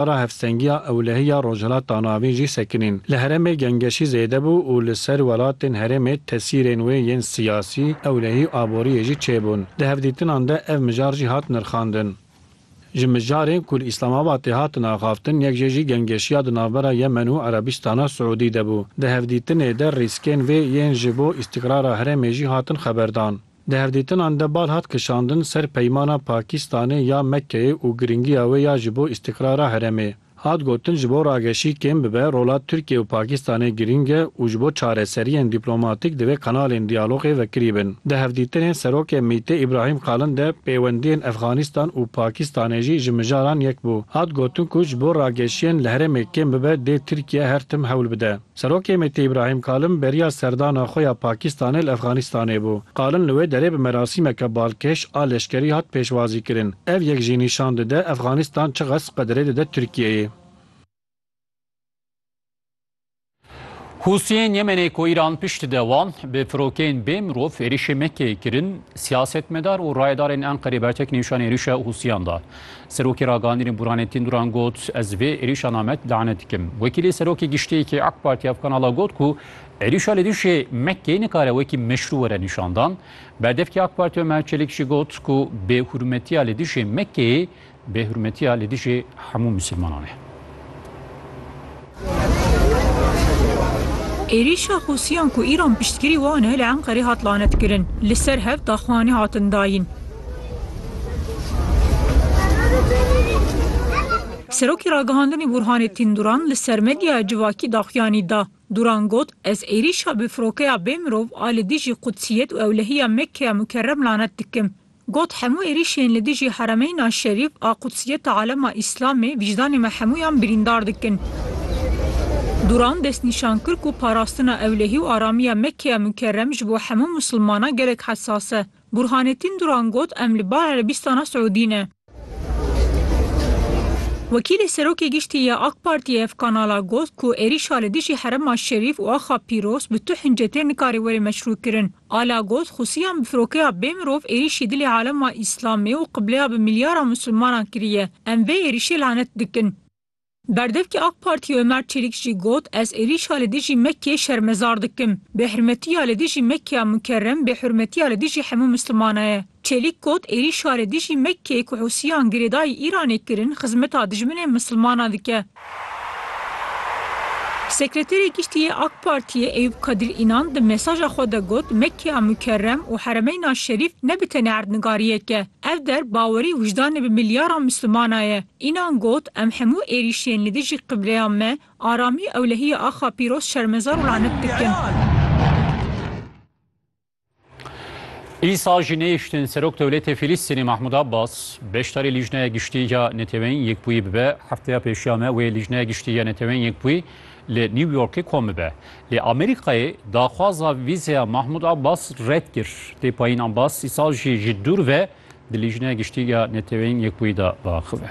Para hevstengiya ewlehî ya Rojhilata Navîn jî sekinîn li herêmê gengeşî zêde bû û li ser welatên herêmê tesîrên wê yên siyasî, ewlehî û aboriyê jî çêbûn. Di hevdîtinan de ev mijar jî hat nirxandin. Ji mijarên ku li Îslamabatê hatin axaftin yek jê jî gengeşiya di navbera Yemen û Erebistana Siûdî de bû. Di hevdîtinê de rîskên vê yên ji bo îstîqrara herêmê jî hatin xeberdan. Di hevdîtinan de bal hat kişandin ser peymana Pakîstanê ya Mekkeyê û girîngiya wê ya ji bo îstîqrara herêmê. Hat gotin ji bo rageşî kêm bibe rola Tirkiye û Pakîstanê girîng e û ji bo çareseriyên dîplomatîk divê kanalên diyalogê vekirî bin. Di hevdîtinên Serokê MĪTê Îbrahîm Kalin de pêwendiyên Efxanîstan û Pakîstanê jî ji mijaran yek bû. Hat gotin ku ji bo rageşiyên li herêmê kêm bibe dê Tirkiye her tim hewl bide. Serokê MHP'ê Îbrahîm Kalin beriya serdana xwe ya Pakîstanê li Efxanîstanê bû. Kalin li wê derê bi merasîmeke balkêş a leşkerî hat pêşwazîkirin. Ev yek jî nîşan dide Efxanîstan çiqas qedirê dide Tirkiyeyê. Hûsiyên Yemenê ku Îran pişt de wan bi firokeyên bê mirov êrîşê Mekkeyê kirin, siyasetmedar û rayedarên Enqerê bertek nîşanî êrîşa Hûsiyan da. Serokê Ragihandinê Buranê Tînduran got, Ez vê êrîşa namet lane dikim. Wekîlê Serokê Giştî yê AK Partî ev kanala got ku êrîşa li dijî MK'ê nikare wekî meşrû were nîşandan. Berdevkê AK Partî Omer Çelik jî got ku bêhurmetiya li dijî MK'ê bêhurmetiya li dijî hemû mislimanan e. Êrîşa Husiyan ku Îran piştgirî wan e li Enqerê hat lanetkirin. Li ser hev daxuyanî hatin dayîn. Serokê Ragihandinê Burhanê Tîn Duran li ser medyaya civakî daxuyanî da. Duran got, Ez êrîşa bi firokeya bê mirov a li dijî Qudsiyet û ewlehiya Mekkeya Mukerrem lanet dikim. Got, Hemû êrîşên li dijî Heremeyna Şerîf a Qudsiyeta Alema Îslamê wijdanê me hemûyan birîndar dikin. Duran destnîşan kir ku parastina ewlehî û aramiya Mekkeya Mukerrem ji bo hemû Musilmanan gelek hesas e. Burhanettin Duran got, Em li bal Erebîstana Siûdî ne. Wekîlê Serokê Giştî ya AK Partiyê ev kanala got ku êrîşa li dijî Herema Şerîf û axa Pîroz bi tu hince tê nikare were meşrûkirin. Ala got, Xusiyan bi firokeya bê mirov êrîşî dilê alema Îslamê û qibleya bi milyara Musulmanan kiriye. Em vê êrîşê lanet dikin. Berdevkê AK Partiyê Ömer Çelik jî got, Ez êrîşa li dijî Mekkeyê şermezar dikim. Bêhurmetiya li dijî Mekkeya Mukerrem bêhurmetiya li dijî hemû Musulmana ye. Çelîk got, Êrîşa re dijî Mekkeyê ku Hûsiyan girêdayî Îranê kirin, xizmeta dijminên misilmanan dike. Sekreterê Giştî yê AK Partiyê Eyûp Kadir Înan di mesaja xwe de got, Mekkeya Mukerrem û Heremeyna Şerîf ne bi tenê erdnigariyek e. Ev der bawerî wijdanê bi milyaran misilmana ye. Înan got, Em hemû êrîşên li dijî qibleya me, aramî ewlehiya axa pîroz şermezar û lanet dikin. Îsa jî nehiştin Serok Dewletê Fîlîstînê Mahmud Abbas beşdarî Lîjneya Giştî ya Neteweyên Yekbûyî bibe. Hefteya pêşiya me wê Lîjneya Giştî ya Neteweyên Yekbûyî li New Yorkê kom bibe. Lê Amerîkayê daxwaza vîzeya Mahmud Abbas red kir. Tê payîn Abbas îsa jî ji dûr ve di Lîjneya Giştî ya Neteweyên Yekbûyî de biaxive.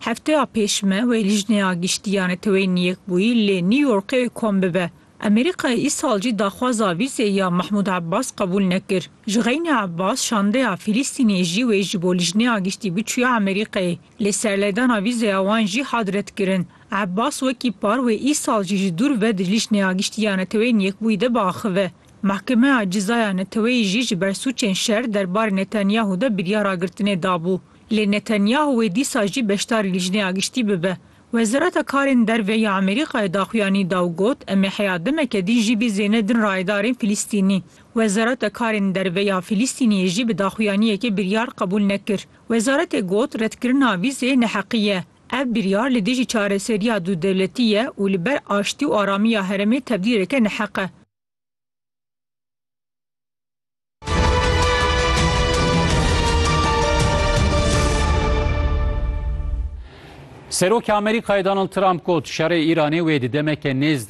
Hefteya pêş me wê Lijneya Giştî ya Neteweyên Yekbûyî lê New Yorkê kom bibe. Amerîkayê îsal jî daxwaza vîzê ya Mahmûd Abbas qebûl nekir. Ji xeynî Abbas şandeya Fîlîstînê jî wê ji bo Lijneya Giştî biçûye Amerîkayê lê serlêdana vîzeya wan jî hat redkirin. Abbas wekî par wê îsal jî ji dûr ve di Lijneya Giştî ya Neteweyên Yekbûyî de biaxive. Mehkemeya Cizaya Neteweyî jî ji ber sûcên şer derbarê Netanyahu de biryara girtinê dabû. Lê Netanyahuê dîsa jî beşdarî Lijneya Giştî bibe. Wezareta Karên Derve ya Amerîkayê daxuyanî da û got, Em ê heya demeke din jî bîzêne din rayedarên Filistînî. Wezareta Karên Derve ya Filistîniyê jî bi daxuyaniyekê biryar qebûl nekir. Wezaretê got, Redkirina vîzê neheqî ye. Ev biryar li dijî çareseriya dû dewletî ye û li ber aştî û aramiya herêmê tevdîreke neheq e. Serokê Amerîkayê Donald Trump got, Şerê Îranê wê di demeke nêz de